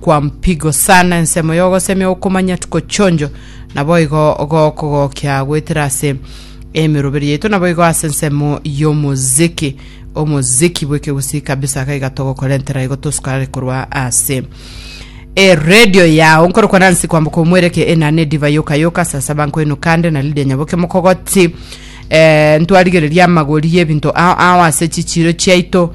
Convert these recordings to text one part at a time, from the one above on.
kwa mpigo sana, ensemo y'ogosemia okomanya tuko chionjo, naboigo gokogokia goetera ase emeroberi yaito, naboigo ase ensemo y'omoziki omoziki bw'ekegusii kabisa gaiga togokorentera igo tosukarare korwa ase eredio yao nkorokwa nansi kwamboka omwereke enana ediva yoka yoka sasa bankoino kande na lidia nyaboke mokogoti eh, ntwarigereria amagori y'ebinto ao ao ase chichiro chiaito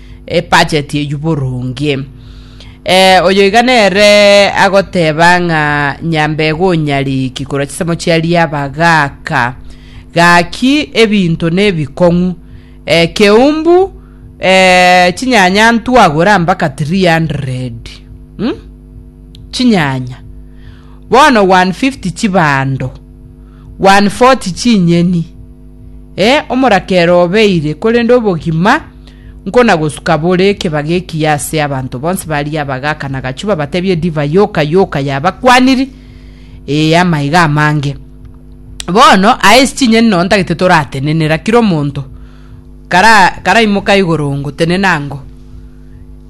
ebacheti eyio boronge. Eh, oyo iga nere agoteba ng'a nyambega onyariki korwa chisemo chia riaba gaka gaki ebinto nebikong'u eh, keumbu eh, chinyanya ntwagora mpaka 300 hmm? chinyanya bono 150 chibando 140 chinyeni eh, omorakero obeire korende obogima Nkonagosuka bore keba gekiya ase abanto bonsi baria abagaaka na gachuba batebie edivai yoka yoka y'abakwaniri, ee, amaiga amange. Bono aye ase chinyeni nonya ntagete toratenenera, kera omonto kara karaimoka igoro ngotenena ango.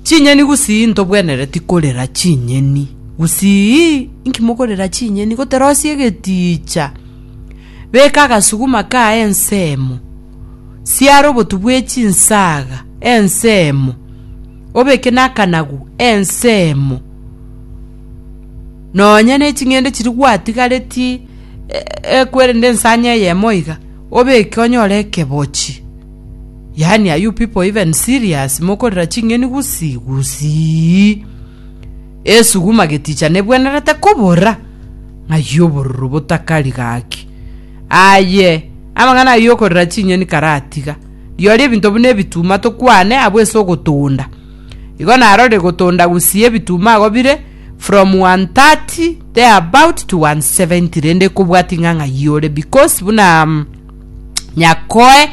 Chinyeni gusii ntobwenereti korera chinyeni, gusii inki mokorera chinyeni, goterosie egetiicha, beka agasuguma kaye ensemo, siara obotu bwe chinsaaga ensemo, obeke nakanagu ensemo, nonya ne ching'ende chiri gwatigaretie e- ekwerende ensanya eyemo iga, obeke onyore ekebochi. Yaani are you people even serious? Mokorera ching'eni gusii gusii. Esuguma geticha nebwenerete kobora, ng'ai obororo botakari gaki. Aye, amang'ana ayio yokorera chinyoni karatiga, riooria ebinto buna ebituma tokwane abwo ase ogotonda. Igo narorire gotonda gusii ebituma agwo bire from 130 there about to 170 rende kobwatia ng'a ng'ai ore because buna um, nyakoe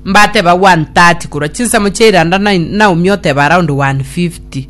mbateba 130 korwa chinsemo chia iranda na, naomi oteba around 150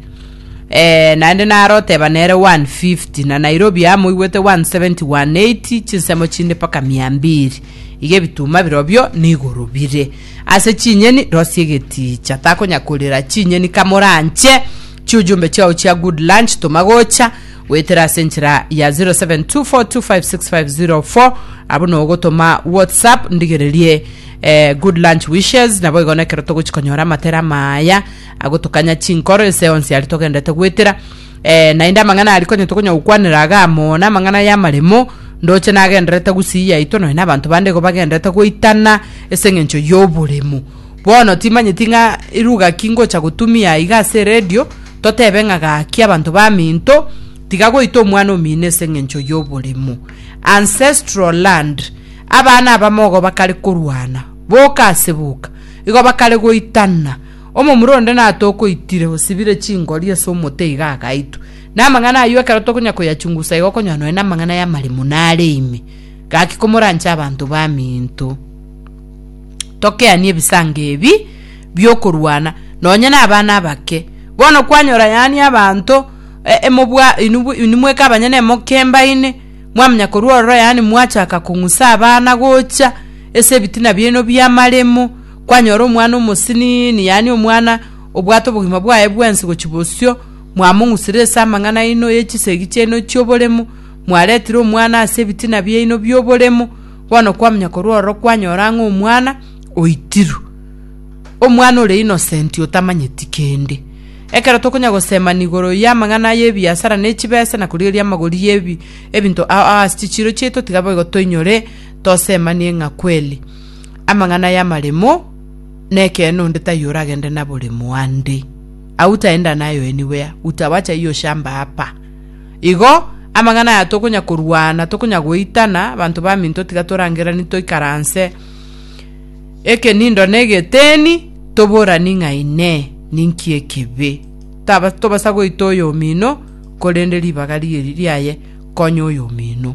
Ee, naende naro oteba nere 150, na Nairobi amo oigwete 170, 180, chinsemo chinde mpaka mia mbiri. Iga ebituma birobio n'igoro bire. Ase chinyeni rosie egetiicha, takonya korera chinyeni kamoranche chiujumbe chiao chia good lunch toma gocha goetera ase enchera ya 0724256504 abo nogotoma whatsapp ndigererie eh, good lunch wishes naboigo nekero togochi konyora amatera maya agotokanya chinkoro ense yonsi aria togendete goetera eh, naende amang'ana aria konya tokonya gokwanera iga amo namang'ana y'amaremo ndoche nagenderete gusii yaito nonya nabanto bande igo bagenderete goitana ase eng'encho y'oboremu bono timanyeti ng'a eruga ki ngocha gotumia iga ase eredio totebe ng'a gaki abanto baminto tiga goita omwana omino ase eng'encho y'oboremu ancestral land abana abamogo bakare korwana boka ase boka igo bakare goitana Omomura onde natokoitire osibire chingori ase omote iga agaitwa. Na amang'ana ayio ekero tokonya koyachungusa iga okonyora nonya namang'ana y'amare muno are ime. Gaki komoranche abanto baminto. Tokeanie ebisango ebi biokorwana nonya nabana abake. Bono kwanyora yaani abanto emobwa inwe mweka abanyene emoke mbaine mwamanya korwa ororo yaani mwachaka kong'usa abana gocha ase ebitina biaino biamaremo. Kwanyora omwana omosinini, yaani omwana obwate obogima bwaye bwensi gochia bosio, mwamong'usire ase amang'ana aino ye chisegi chiaino chi'oboremu, mwaretire omwana ase ebitina biaino bi'oboremu, bono kwamanya korwa ororo kwanyora ng'a omwana oitirwe. Omwana ore innocent otamanyeti kende. Ekero tokonya gosemani igoro y'amang'ana y'ebiasara ne chibesa na korigereria amagori y'ebi ebinto ao ao ase chichiiro chiaito tiga boigo toinyore tosemanie ng'a kweli. amang'ana y'amaremo, na ekeene onde taiyo oragende naboremo ande, agwo taenda naye anywhere, utawacha hiyo shamba hapa. Igo amang'ana aya tokonya korwana, tokonya goitana, abanto baminto tiga torangeranie toikaranse ekenindo na egeteni, toborani ng'a ine ninki ekibe. Taba tobasa goita oyomino, korende ribaga riria riaye konya oyomino.